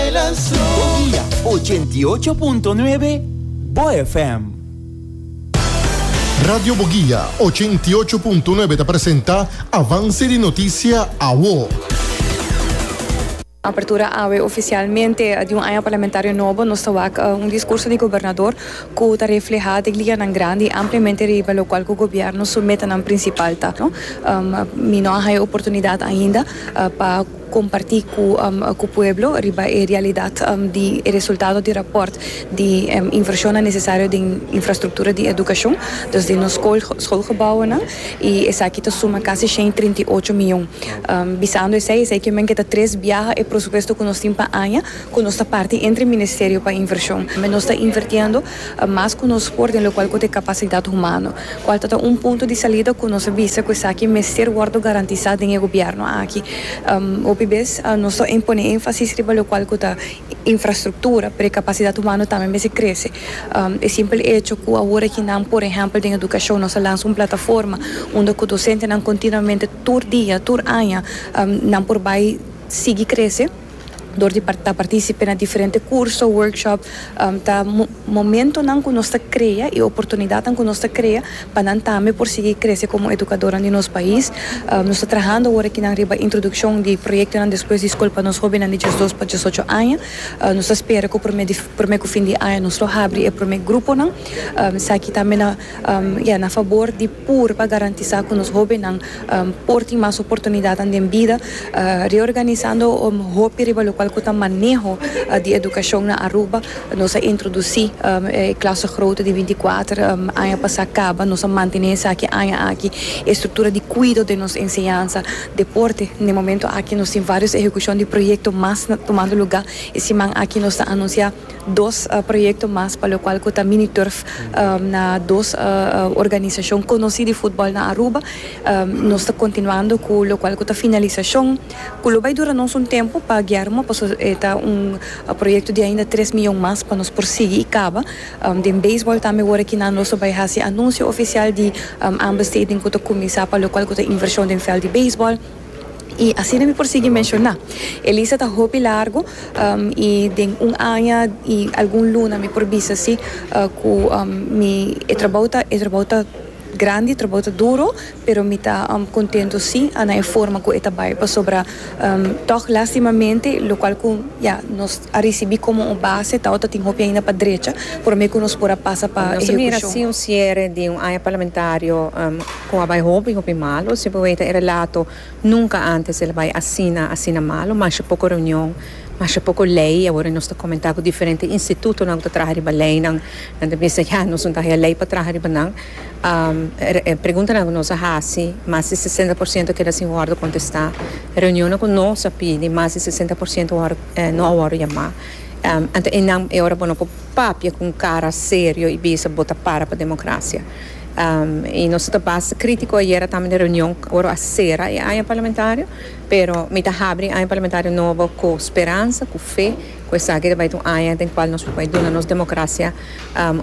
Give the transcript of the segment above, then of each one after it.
Guia ochenta i ocho punto nuebe, Bo FM. Radio Boguia ochenta i ocho punto nuebe ta presenta Avance di Noticia Awo. Apertura Awe Oficialmente di un aña parlamentario nobo nos ta wak un discurso di Gobernador cu ta refleha den liñanan grandi y ampliamente riba locual cu Gobierno su metanan principal ta. Mi no a haya oportunidad ainda pa. comparti cu pueblo riba e realidad di e resultado di rapport di inversionnan necesario den infrastructura di educacion, dus den nos schoolgebouwennan, y esaki ta suma casi shen y trinta y ocho miyon. Bisando esey, esey kimen ke ta tres biaha e prosupuesto cu nos tin pa aña, cu nos ta parti entre e Ministerio pa inversion. Nos ta invertiendo a mas ku nos por den lokual ku ta e kapasidat humano, kual ta ta un punto di salida ku nos a bisa ku esaki mester wòrdu garantisá den e gobièrnu aki. Hopi bes nos ta pone énfasis riba lokual ku ta infrastruktura, pero e kapasidat humano tambe mester krese. E simpel echo ku awor aki nan, por ehèmpel den edukashon, nos a lansa un plataforma unda ku dosentenan kontinuamente tur dia, tur aña, nan por bai sigui krese, dor di ta partísipe na diferente kurso, workshop, ta momentonan ku nos ta krea i oportunidatnan ku nos ta krea pa nan tambe por sigui krese komo edukadornan di nos pais. Nos ta trahando awor aki nan riba introdukshon di proyektonan despues di skol pa nos hóbennan di diesdos pa diesocho aña. Nos ta spera ku promé di promé ku fin di aña nos lo habri e promé gruponan. Esaki tambe na, ya, na fabor di. pur pa garantisá ku nos hóbennan por tin mas oportunidatnan den bida, reorganisando hopi riba lokual ku ta maneho di edukashon na Aruba. Nos a introdusí e klase grote di binti kuater aña pasá kaba. Nos a mantené esaki aña aki. E struktura di kuido den nos enseñansa, deporte, den momentu aki nos tin vários ehekushon di proyekto mas tumando lugá. E siman aki nos ta anunsiá. Dos proyekto mas pa lokual ku ta mini turf na dos organisashon konosí di futbòl na Aruba. Nos ta kontinuando ku lokual ku ta finalisashon ku lo bai dura nos un tempu pa Guillermo pasobra e ta un proyekto di ainda tres miyon mas pa nos por sigui i kaba. Den beisbòl tambe worakinan nos lo bai hasi anunsio ofisial di ambas stadium ku ta kuminsá pa lokual ku ta invershon den vèlt di beisbòl. I asina mi por sigui menshoná. E lista ta hopi largu i den un aña i algun luna mi por bisa si ku mi e trabou ta e trabou ta grandi, e trabou ta duru pero mi ta kontentu si a na e forma ku e ta bai pasobra tòg lastimamente lo kual ku ya nos a risibí komo un base tao ta tin hopi ainda pa drecha promé ku nos por a pasa pa ehekushon. Nos a mira si un siere di un aña parlamentario. Cu a bay hopi, hopi malo. Si bo weta e relato, nunca antes el a bay asina, asina malo. Masha poco reunion, masha poco ley. Awor e nos ta comenta cu diferente institutonan cu ta traha riba leynan, nan ta bisa ya, nos no ta haya ley pa traha riba nan. E preguntanan cu nos a haci, mas di sesenta por ciento keda sin wordo contesta. Reunionnan cu nos a pidi, mas di sesenta por ciento wor no a wordo yama. Anto eynan e ora bo no por papia cu un cara serio y bisa bo ta para pa democracia. I nos ta basta crítico ayera tambe den reunion ora a cera e aña parlamentario, pero mi ta habri e aña parlamentario nobo cu speransa, cu fe, cu esaki ta bay ta un aña den cual nos por bay duna nos democracia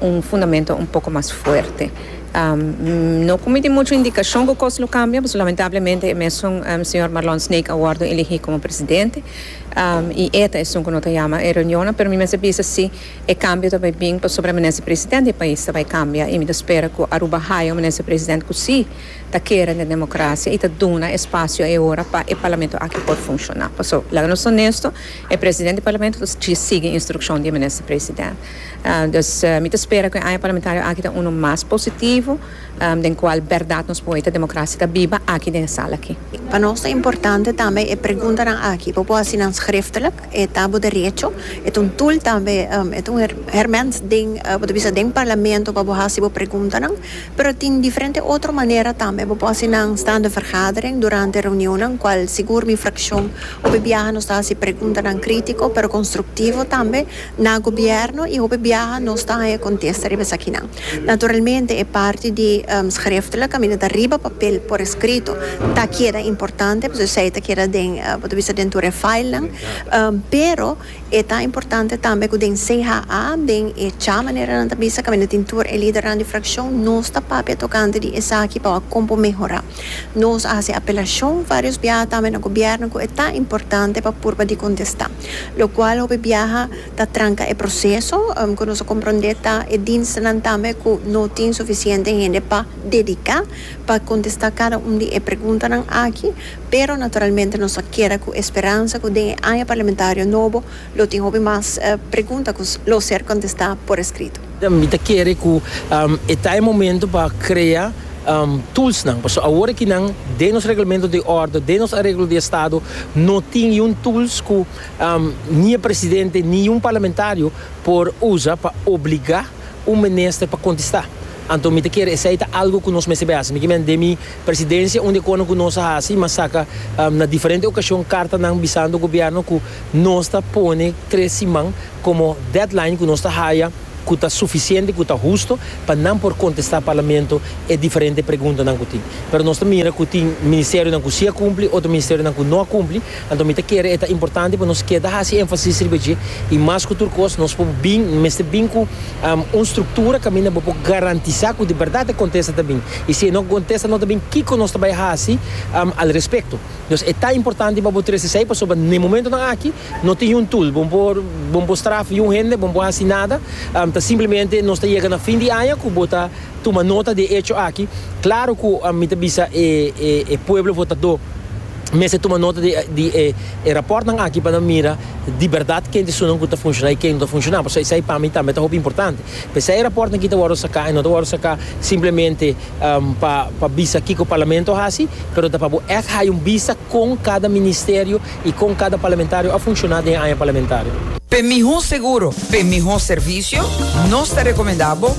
un fundamento un poco mas fuerte. No cu mi tin mucho indicacion cu cos lo cambia pasobra lamentablemente e mesun señor Marlon Snake a wordo elegi como presidente i e ta esun cu no ta yama e reunionnan, pero mi mester bisa si. E kambio ta bai bin pasobra minister president di e pais ta bai kambia y mi ta spera cu Aruba haya un minister president cu si ta kere den democracia y ta duna espacio e ora pa e parlamento aki por funciona. Paso laga nos honesto e president di parlamento ta sigui instruccion di e minister president. Dus mi ta spera cu e aña parlamentario aki ta uno mas positivo den cual berdad nos por wei ta democracia ta biba aki den e sala aki. Pa nos ta importante tambe e preguntanan aki bo por haci nan schriftelijk. E ta bo derecho. E ta un tool tambe, e ta un herment den, bo ta bisa den parlamento pa bo hasi bo preguntanan, pero tin diferente otro manera tambe. Bo por hasi nan staande vergadering, durante reunionnan, cual sigur mi fraccion hopi biaha nos ta hasi preguntanan critico pero constructivo tambe na gobierno y hopi biaha nos ta haña contesta riba esakinan. Naturalmente e parti di schriftelijk kaminda ta riba papel por escrito ta keda importante pasobra esei ta keda den bo ta bisa den tur e file nan pero e ta importante tambe ku den CHA den e cha manera nan ta bisa kaminda tin tur e lidernan di fraccion nos ta papia tokante di esaki pa wak kon por mehora nos a hasi apelacion varios biaha tambe na gobierno ku e ta importante pa purba di contesta locual hopi biaha ta tranca e proceso cu nos a comprende ta e dienstennan tambe cu no tin suficiente hende pa dedica pa contesta cada un di e preguntanan aki, pero naturalmente nos a keda cu esperansa cu den e aña parlamentario nobo lo tin hopi mas pregunta cu lo ser contesta por escrito. Mi ta kere cu e ta e momento pa crea toolsnan, pasobra awor aki nan den nos reglamento di orde, den nos areglo di estado no tin iun tools cu. Ni e presidente ni un parlamentario por usa pa obliga un minister pa contesta. Anto mi ta kere esey ta algo cu nos mester bay haci. Mi kimen den mi presidencia un di e conan cu nos a haci mi a saca na diferente ocasion cartanan bisando gobierno cu nos ta pone tres siman como deadline cu nos ta haya cu ta suficiente cu ta husto pa nan por contesta parlamento e diferente preguntanan cu tin. Pero nos ta mira cu tin ministerionan cu si a cumpli otro ministerionan cu no a cumpli Anto mi ta kere e ta importante pa nos keda hasi énfasis riba dje, i mas ku tur kos nos por bin, mester bin ku un struktura kaminda bo por garantisá ku di bèrdat e kontesta ta bin. I si e no kontesta no ta bin, kiko nos ta bai hasi al respekto? Nos e ta importante pa bo trese esei pasobra n'e momentunan aki no tin yun tul, bo no por bo no por strafa yun hende, bo no por hasi nada, ta simplemente nos ta yega na fin di aña ku bo ta tuma nota di e echo aki. Klaru ku mi ta bisa e pueblo votadó. mester tuma nota di e rapòrtnan aki pa nan mira di bèrdat ken tisunan ku ta funshoná i ken no ta funshoná. Pasobra esei pa mi tambe ta hopi importante. P'esei e rapòrtnan aki ta wòrdu saká i no ta wòrdu saká simplemente pa pa bisa kiko Parlamento a hasi, pero ta pa bo ègt haña un bista kon kada ministerio i kon kada parlamentario a funshoná den e aña parlamentario. P'e mihó seguro, p'e mihó servisio, nos ta rekomendá bo